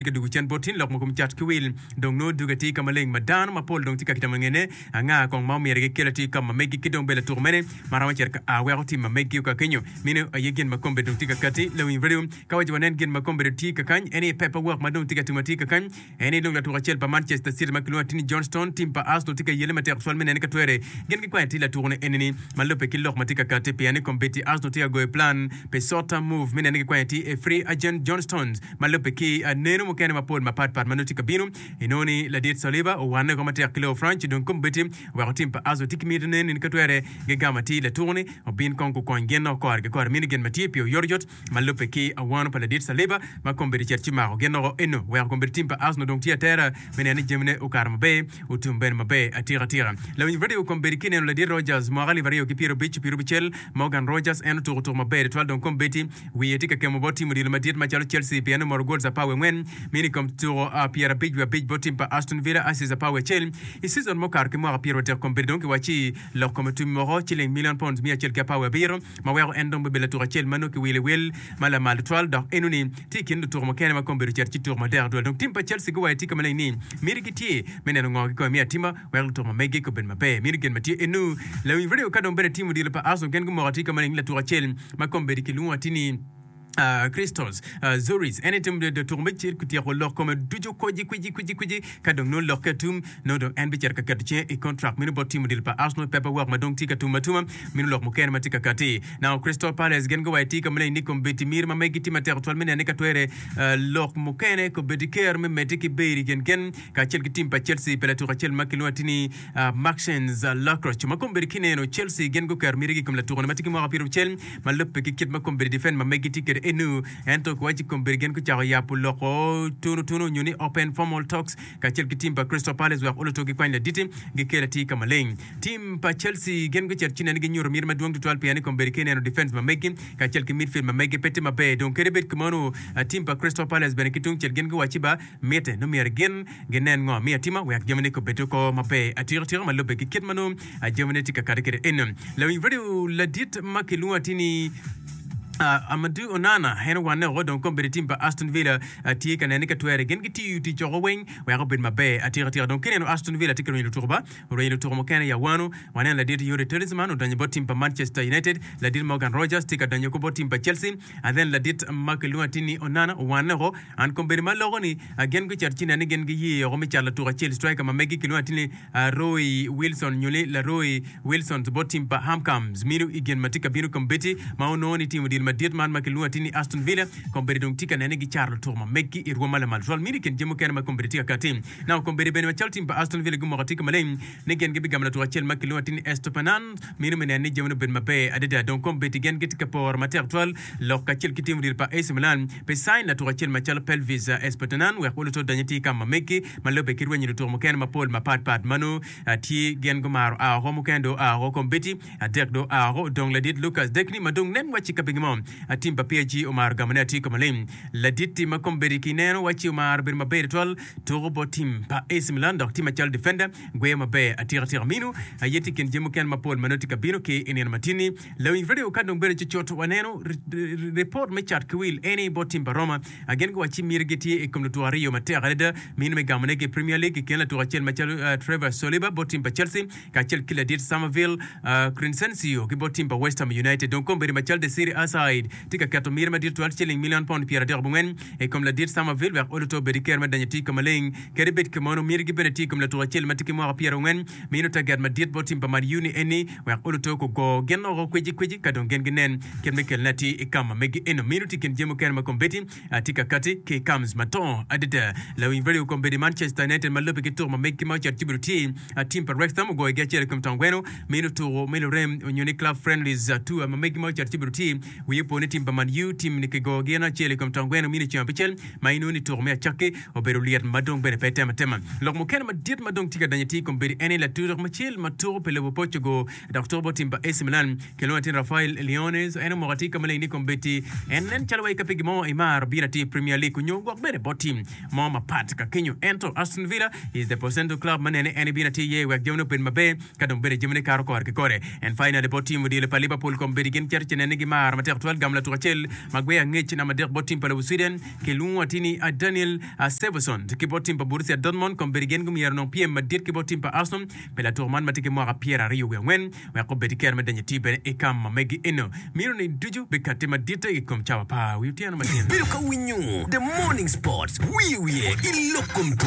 ki doko cen bot tin lok mogo me cat ki wil. Dong nongo duge tye ka maleng ma dano mapol dong tye ka kitamo ngene? Anga kong ma omyero gikel atir ka ma megi ki dong bed latuk mene ma romo cito ka a weko tim ma megi okakenyo? Meno aye gin ma kombe dong tye ka kati. Lawiny radio ka waco wanen gin ma kombe dong tye ka kany eni paper work ma dong tye ka timo atir ka kany eni lung latuk acel pa Manchester City ma kilwongo atini John Stone tim pa Arsenal tye ka yelle matek tutwal me nene ka twere gin gikwanyo atir latuko ne enini ma lube ki lok ma tye ka kati pien ni kombeddi Arsenal tye ka goyo plan pi short term move me nene gikwanyo atir a free agent John Stones Ma lubbe ki aneno mukene mapol mapat pat ma nongo tye ka bino, inongo ni ladit Saliba owanne oko matek ki lobo Franc dong kome bedi oweko tim pa Arsenal tye ki miti nen in ka twere gigamo atir latuku-ni obin kong gukony gin noko kore ki kore mini gin ma tye pi oyotoyot ma lubbe ki awano pa ladit Saliba ma kome bedi cet ci mako gin noko eno weko kome bedi tim pa Arsenal dong tye atera me neno ni jamine okato maber otum bene maber atika tika. Lawiny radio kome bedi ki neno ladit Rodgers mwaka alip aryo ki pyerabic ki pyerabucel Morgan Rodgers en otuku tuku maber tutwal dong kome bedi wiye tye ka kemo bot tim odilo madit macalo Chelsea pien omoro gols apar wiye angwen meno i kom tuko pyerabic wiye abic bot tim pa Aston Villa, assists apar wiye acel, i season mukato ki mwaka pyerotek kong bedo dong kiwacci lok kome tubi moko ciling million pounds miya acel ki apar wiye abiro ma weko en dong bedo latuk acel ma nongo kiwilo i wil ma lamal tutwal dok enoni tye i kin lutuko mukene ma kong bedo cito ci tuko matek tutwal dong tim pa Chelsea guwayo tika maleng ni miti gitye me neno ngo gikome me atima Wek lutuk ma mege obed maber, miti gin ma tye enu. Lawiny redio ka dong bene timo odilo pa Aso gen gumoko atir ka maleng ni latuk acel ma kombeddi ki lwongo atir ni Christos Zoris. En aye timo dilo tuko me cir kutyeko lok kome ducu kwici kwici kwici kwici ka dong nongo lokke atum nongo dong en bicito ka keto cinge i kontrak meno bot timo odilo pa Aso nongo pepa wok ma dong tye ka tum atuma meno lok mukene ma tye ka kati nao Crystal Palace gen guwayo atir ka maleng ni kombeddi miri ma megi tye matek twal me nene ka twere lok mukene kombeddi ker me medde ki beri gen gen Kacel ki tim pa Chelsea pi latuk acel ma kilwongo ati ni Maxence Lacroix ma kombeddi ki neno, Chelsea gin guketo mitigi i kom latuko-ni ma tye ki mwaka pyeraucel ma lubbe ki kit ma kombeddi defen ma megi tye kwede eno. Ento kiwaci kombeddi gin gucako yabo loko tunotunu nyo ni open formal talks kacel ki tim pa Crystal Palace wek oluto gikwany ladit gikel atir ka maleng. Tim pa Chelsea gin gucito ci neni ginyuto miti madwong tutwal pien ni kombeddi ki neno defens ma megi kacel ki midfield ma megi pe tye maber dong kadi bed kemano tim pa Crystal Palace bene ki tungcel gin giwacci ba mitte nongo myero gin ginen ngo miyo atimo wek jamine kobed oko maber atika tika ma lube ki kit ma nongo jamine tye ka kati kede eno. Lawiny radio ladit ma kilwongo ati ni Uh, Amadou Onana en owanne oko dong kombedi tim pa Aston Villa uh, tye ka nene ka twere gin gitiyo tic oko weng wek obed maber atika tika dong kineno Aston Villa tye ka rwenyo lutuko ba orwenyo lutuko mukene ya wano waneno ladit Yuri Talisman odonyo bot tim pa Manchester United ladit Morgan Rogers tye ka donyo ko bot tim pa Chelsea Athen ladit ma kilwongo atir ni Onana owanne oko. An kombeddi ma aloko ni gin gucito ci nen ni gin giye oko me cat latuk acel striker ma megi kilwongo atir ni Roy Wilson nyo ni Laroy Wilsons bot tim pa Hamcams mino i gin ma tye ka bino kombeddi ma onongo ni timo dil madit man ma kilwongo atir ni Aston Villa kombeddi dong tye ka nen ni gicaro lutuk ma megi i rwom ma lamal twal mino i kin jami mukene ma kombeddi tye ka kati nako kombeddi bene macalo tim pa Aston Villa gumoko atir ki maleng ni gin gibigamo latuk acel ma kilwongo atir ni Estopanan, meno me neno ni jamine obed maber adada. Dong kom bed i gen gitye ka poro matek twal lok kacel ki timo diro pa Ac Milan pi sain latuk acel macalo Pelvis Estopanan wek oluto odony atir ka ma meggi ma lubbe ki rwenyo lutuk mukene mapol mapat pat ma nongo tye gin gumaro a woko mukene dong oa woko kom bedi adek dong oa woko odong ladit Lucas Degni ma dong nen wacci ka pingo mo atim pa PSG omaro gamone atir kome lim ladit-ti ma kom bedi ki neno wacci omaro bedo maber twal tuko bot tim pa AC Milan dok tye macalo defender. Gweyo maber atika atika minu aye tye i kin jami mukene mapol ma nongo tye ka bino ki i nino matinni. Lawiny radio ka dong bedo cucut waneno ripot me cat ki wil eni bot tim pa Roma. Gin guwacci mitigi tye i kom lutuko aryo matek adada minu me gamonegi i Premier League i kin latuk acel macalo Trevor Saliba bot tim pa Chelsea kacel ki ladit Summerville, Crinsencio ki bot tim pa West Ham United. Dong kombeddi ma cal The City Aside tye ka keto myere madit twal ciling milion pound pyeradek abongwen i kom ladit Summerville wek olo to obed ki kero me donyo tic ka maleng kede bed ki mono. Myergi bene tye i kom latuko acel ma tye ki mwaka pyerangwen ma ino taget madit bot tim pa Man U ni eni wek olo to gugo gin oko kweci kweci ka dong gin ginen kit me kelone atir i kama megi eno ma ino tye i kin jami mukene ma kombeddi Atye ka kati ki i Cams matongo adada. Lawiny redio i kombeddi man Chester Anenten ma lubbe ki tuko ma meggi ma ocito Jubilo tye a tim pa Wrexham ogoyogi acel i kom taun gweno me nino tuko me lurem onyo ni Club Friendlies tour ma meggi ma ocito Jubilo tye wiye opo ni tim pa Man U tim ni kigoyo gin acel i kom taun gweno mino ceng abicel ma inongo ni tuko me acakki obedo lyet ma dong bene pe tem atema. Lok mukene madit ma dong tye ka danyo tye i kombeddi ene latutuk macel ma tuko pi lobo poc ogo dok tuko bot tim pa AC Milan Kilwongo latin Rafael Leones, en omoko atika maleng ni kombeddi en nen calo wa ikape gimo imaro bino atir Premier League onyo gwok bene bot team mo mapat ka kenyo ento Aston Villa is the potential club ma nene en ibino atir iye wek jamine obed maber ka dong bene jamine kato kore ki kore and finally bot team odilo pa Liverpool kombeddi gin cito ce nene gimaro matek twal gamo latuk acel ma gweyo angec namba adek bot team pa lobo Sweden kilwongo atir ni Daniel Seversond ki bot team pa Borussia Dortmund kombeddi gin gumyero onong pyem madit ki bot team pa Arsenal pi latuk man matye ki mwaka pyera aryo wiye angwen wek obed ki kero me donyo iti bene i ka ma megi eno. Miro ni ducu bikatte maditte i kom cawa pa wi otyeno ma tin. Bedo ka winyo The Morning Sports wiye wiye i lok kom tuko.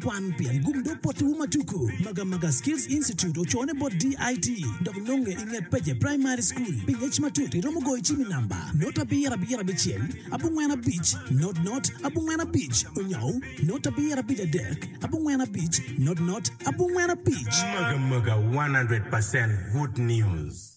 Kwan pien gum dog pottiwu ma tuku. Maga Maga Skills Institute ocone bot DIT dok nonge i nget Peje Primary School. Pi ngec matut iromo goyo cim i namba, not abiro abiro abicel, abongwen abic, not not, abongwen abic, onyou, not abiro abic adek, abongwen abic, not not, abongwen abic. Maga Maga 100 percent good news.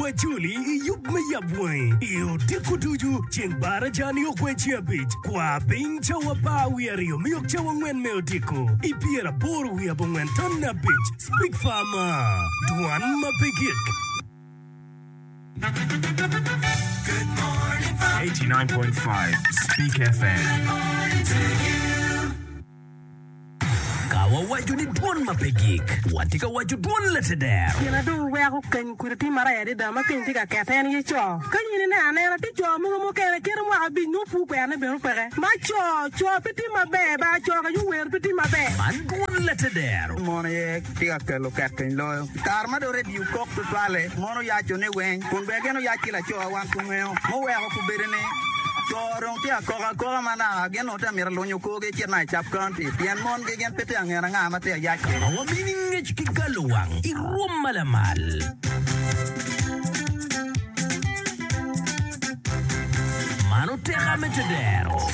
Wajoli i yub me yabwangi i odiko ducu ceng bar aca nio kwer ceng abic. Kwa piny cawa apar wiye aryo miok cawa angwen me odiko i pyer aboro wiye abongwen ton ne abic. Speak far ma dwan ma pe gik. Good morning, Fox. 89.5 Speak FM. Good morning to you. Ka wawaco ni dwon ma pe gik, watye ka waco dwon lateder. Gin adek weko keny kudi tye maraya adada ma keny tye ka kette en aye co. Ka in ineno anena, tye co mogo mukene kite mwaka abic nongo pur kwena ne bene opeke. Ma co, co pe tye maber, ba co ka yo wer pe tye maber. Man dwon lateder. Mon aye tye ka kelo keteny loyo. I kare ma dong redio okok tutwalle, mon oyaco ne weng, kun bene gin oyac ki lacowa wan kungeyo. Muweko kubedo ni, co dong tye ka kok akoka manaka. Awobi amito alunyo korgi ecit ma i Sub County pien mon gi gin pe tye angen anga ma tye ayac ki. Awobi ni ngec ki galo wang i rwom ma lamal. Mano teka me tedero.